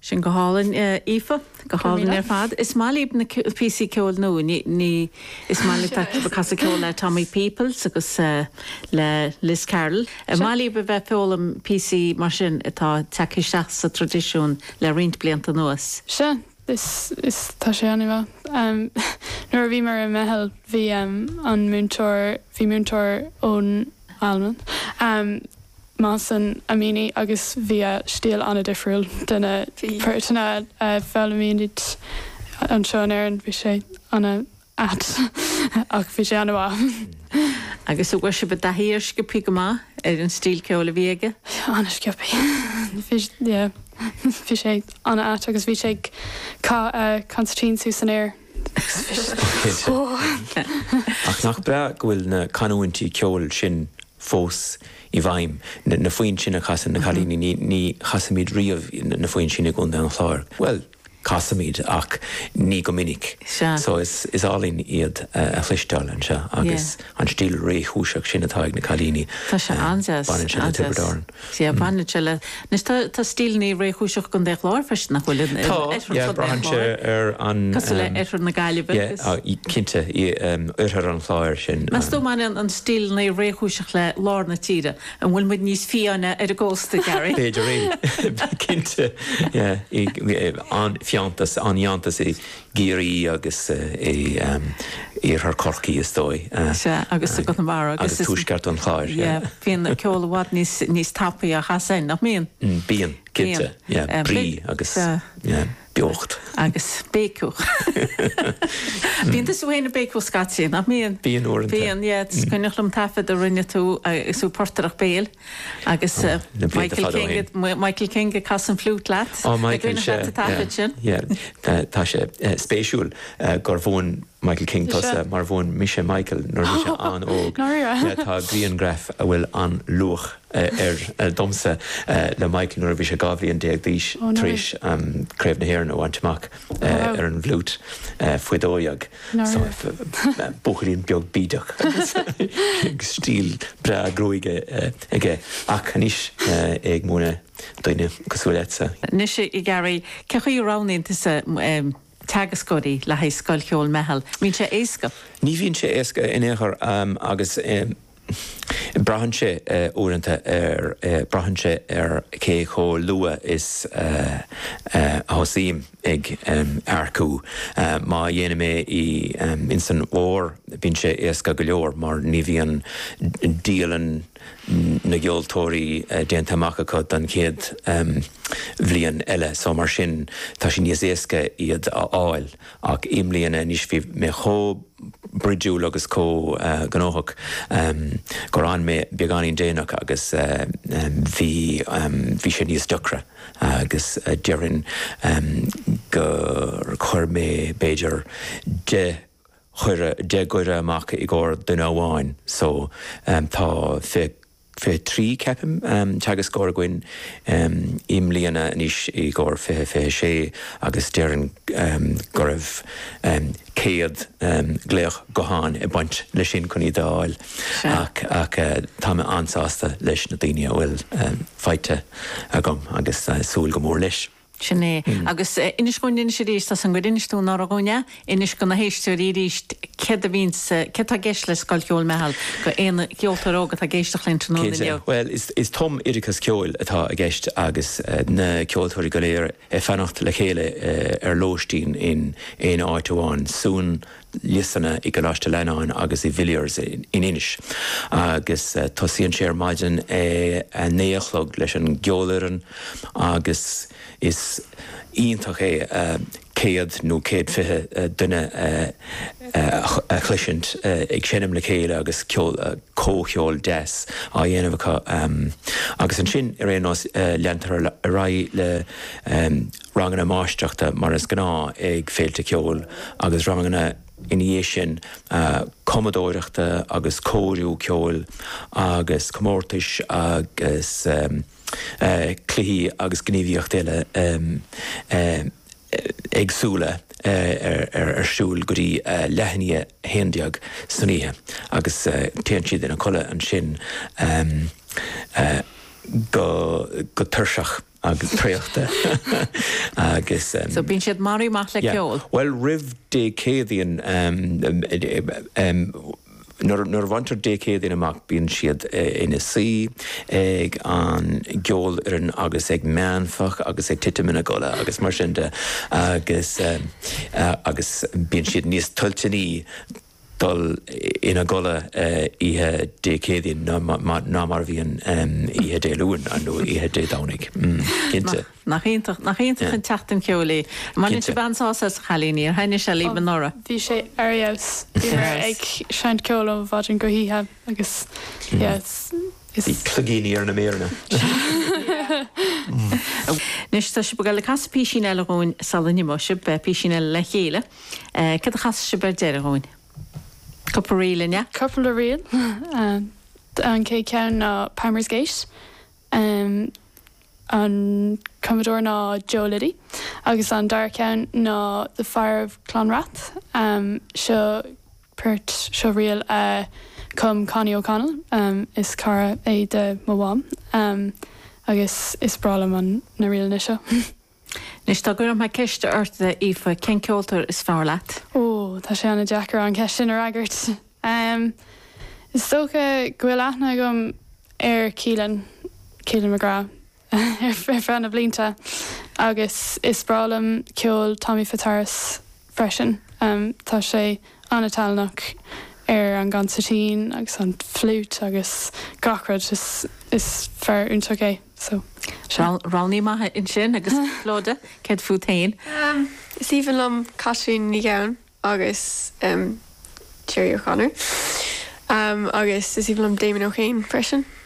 Sin go hálainn, Aoife. Go hálainn ar fad. Is maith libh na píosaí ceoil nua. Is maith libh bheith ag casadh ceoil le Tommy Peoples agus le Liz Carroll. Is maith libh a bheith ag foghlaim píosaí mar sin atá tagtha isteach sa traidisiún le roinnt blianta anuas. Sea, is tá sé an-mhaith. Nuair a bhíomar i Meitheal bhí an múinteoir, bhí múinteoir ón Albain. Mohsen Amini agus bhí a stíl an-difriúil do na poirteanna a foghlaimímid anseo in Éirinn. Bhí sé an-ait ach bhí sé an-mhaith. Agus an bhfuair sibh i dtaithí air sciobtha go maith ar an stíl ceoil a bhí aige? An-sciobtha. Bhí, yeah, bhí sé an-ait agus bhí sé ag caitheamh an consairtín suas san aer. Ach nach breá go bhfuil na canúintí ceoil sin fós i bhfeidhm, na foinn sin a chasann na cailíní, ní chasaimid riamh na foinn sin i gContae an Chláir, bhuel, casaimid ach ní go minic, so is álainn iad a chloisteáil anseo agus an stíl réchúiseach sin atá ag na cailíní, baineann sé le Tiobraid Árann. Sea, baineann sé le. Anois, tá stíleanna réchúiseacha i gContae an Chláir freisin, nach bhfuil? Tá, yeah, braitheann sé ar an. Cosúil le Oirthear na Gaillimhe. Yeah, cinnte, Oirthear an Chláir sin. Meas tú an mbaineann na stíleanna réchúiseacha le lár na tíre? An bhfuil muid níos fiáine ar an gcósta, Gary? B'fhéidir é. Cinnte, yeah, an-fhiántas, an-fhiántas i gCiarraí agus in iarthar Chorcaí is dóigh. Sea, agus i gConamara agus. agus tuaisceart an Chláir. Yeah, bíonn an ceol i bhfad níos, níos tapaí a chastar é, nach mbíonn? Bíonn, cinnte, yeah, brí agus, yeah, beocht. Agus béiceadh. Bíonn tusa féin ag béiceadh scaití, nach mbíonn? Bíonn uaireanta. Bíonn, yeah, is cuimhneach liom taifead a rinne tú, is tú ag portaireacht béil. Agus Michael King, Michael King ag casadh an fliút leat. Ó Michael, seo, yeah, yeah, tá sé spéisiúil gur mhúin Michael King tusa mar mhúin mise Michael nuair a bhí sé an-óg. Tá grianghraf a bhfuil an-luach air domsa le Michael nuair a bhí sé 12 bhliain d'aois tar éis Craobh na hÉireann a bhaint amach ar an bhfliút faoi dhó dhéag. So buachaillín beag bídeach agus stíl breá gruaige aige ach anois é ag múineadh daoine cosúil leatsa. Anois i gCiarraí, cé chaoi a roghnaíonn tusa teagascóirí le haghaidh Scoil Cheoil Meitheal? An mbíonn sé éasca? Ní bhíonn sé éasca in aon chor agus Braitheann sé uaireanta ar, braitheann sé ar cé chomh luath is a thosaím ag earcú. Má dhéanaim é i, ins an bhfómhar, bíonn sé éasca go leor mar ní bhíonn dialann na gceoltóirí déanta amach acu don chéad bhliain eile so mar sin tá sé níos éasca iad a fháil. Ach i mbliana, anois, bhí mé chomh broidiúil agus chomh gnóthach gur fhan mé beagáinín déanach agus bhí, bhí sé níos deacra agus déarfainn gur chuir mé b'fhéidir deich gcuireadh amach i gcomhair duine amháin. So tá fiche 23, ceapaim, teagascóir againn i mbliana anois i gcomhair fiche, 26, agus déarfainn go raibh céad glaoch gutháin ag baint leis sin chun iad a fháil ach tá mé an-sásta leis na daoine a bhfuil faighte agam agus súil go mór leis. Sin é. Agus inis dhúinn anois aríst, tá a fhios agam gur inis tú anuraidh dhúinn é, inis do na héisteoirí aríst céard a bhíonns, céard atá i gceist le Scoil Cheoil Meitheal do aon cheoltóir óg atá ag éisteacht linn tráthnóna inniu? Cinnte. Bhuel, is tumoideachas ceoil atá i gceist agus na ceoltóirí go léir ag fanacht le chéile ar lóistín in aon áit amháin. Suan liosanna i gColáiste Fhlannáin agus i Villiers in Inis agus tosaíonn sé ar maidin ag a naoi a chlog leis an gceolfhoireann agus is iontach é céad nó céad fiche duine a chloisint ag seinm le chéile agus comhcheol deas á dhéanamh acu agus ansin ar aon nós leantar ar aghaidh le ranganna máistreachta mar is gnáth ag féilte ceoil agus ranganna ina dhiaidh sin cumadóireachta agus cóiriú ceoil agus comórtais agus cluichí agus gníomhaíochtaí eile éagsúla ar siúl go dtí leath i ndiaidh a haon déag san oíche agus téann siad ina codladh ansin go tuirseach. is traochta agus. So bíonn siad maraithe amach le ceol? Bhuel roimh Dé Céadaoin nuair a bhaintear Dé Céadaoin amach bíonn siad ina suí ag an gceolfhoireann agus ag meánfach agus ag titim ina gcodladh agus mar sin de agus agus bíonn siad níos toilteanaí dul ina gcodladh oíche Dé Céadaoin ná mar a bhíonn oíche Dé Luain nó oíche Dé Domhnaigh, cinnte. Nach iontach, nach iontach an tseachtain cheoil í. Baineann sibh an-sásamh as, a chailíní, ar thaitin sé libh anuraidh? Bhí sé ar fheabhas, bhíomar ag seinnt ceoil ó mhaidin go hoíche agus yeah. Bhí cloigíní ar na méireanna! Anois tá sibh ag dul ag casadh písín eile dhúinn sula n-imeoidh sibh, písín eile le chéile. Eh, cad a chasfas sibh ar deireadh dhúinn? Cupla ríl, an ea? Cupla ríl. Eh, an céad ceann ná Palmer's Gate. Em, an cumadóir ná Joe Liddy agus an dara ceann ná The Fire on Clanrath. Em, seo port, seo ríl a chum Connie O'Connell, em, is cara é de mo mham. Em, agus is breá liom an, na ríleanna seo. Anois, dá gcuirfeadh mé ceist ort, a Aoife, cén ceoltóir is fearr leat? Ó, tá sé an-deacair an cheist sin a fhreagairt. Is dócha go bhfuil aithne agam ar Keelan, Keelan McGrath, ar feadh na blianta agus is breá liom ceol Tommy Fitzharris. freisin. Tá sé an-tallannach ar an gcansairtín agus an fliúit agus gach rud. Is fear iontach é. Sea. Rogha maith é ansin. Agus Clodagh, céard fút féin? Is aoibhinn liom Caitlín Nic Gabhann agus Tara Breen. Agus is aoibhinn liom Damien Ó hEidhin freisin.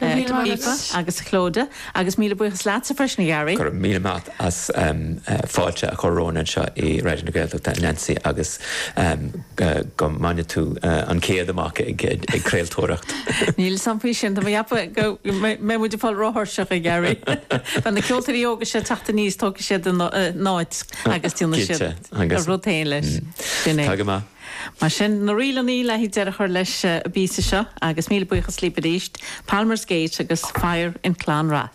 Aoife agus Clodagh agus míle buíochas leatsa freisin a Ghearaí. Go raibh míle maith as fáilte a chur romhainn anseo i Raidió na Gaeltachta, a Nancy, agus go mbaine tú an céad amach ag craoltóireacht. Níl a fhios agam faoi sin, tá mé ag ceapadh go mbeidh muid ag fáil róthuirseach a Ghearaí. Beidh na ceoltóirí óga seo ag teacht aníos, tógfaidh siad an áit agus déanfaidh siad a rud féin leis. Sin é. Tá go maith. Mar sin, na ríleanna le deireadh a chur leis an bpíosa seo, agus míle buíochas, libh arís, Palmer's Gate agus Fire in Clann Rath.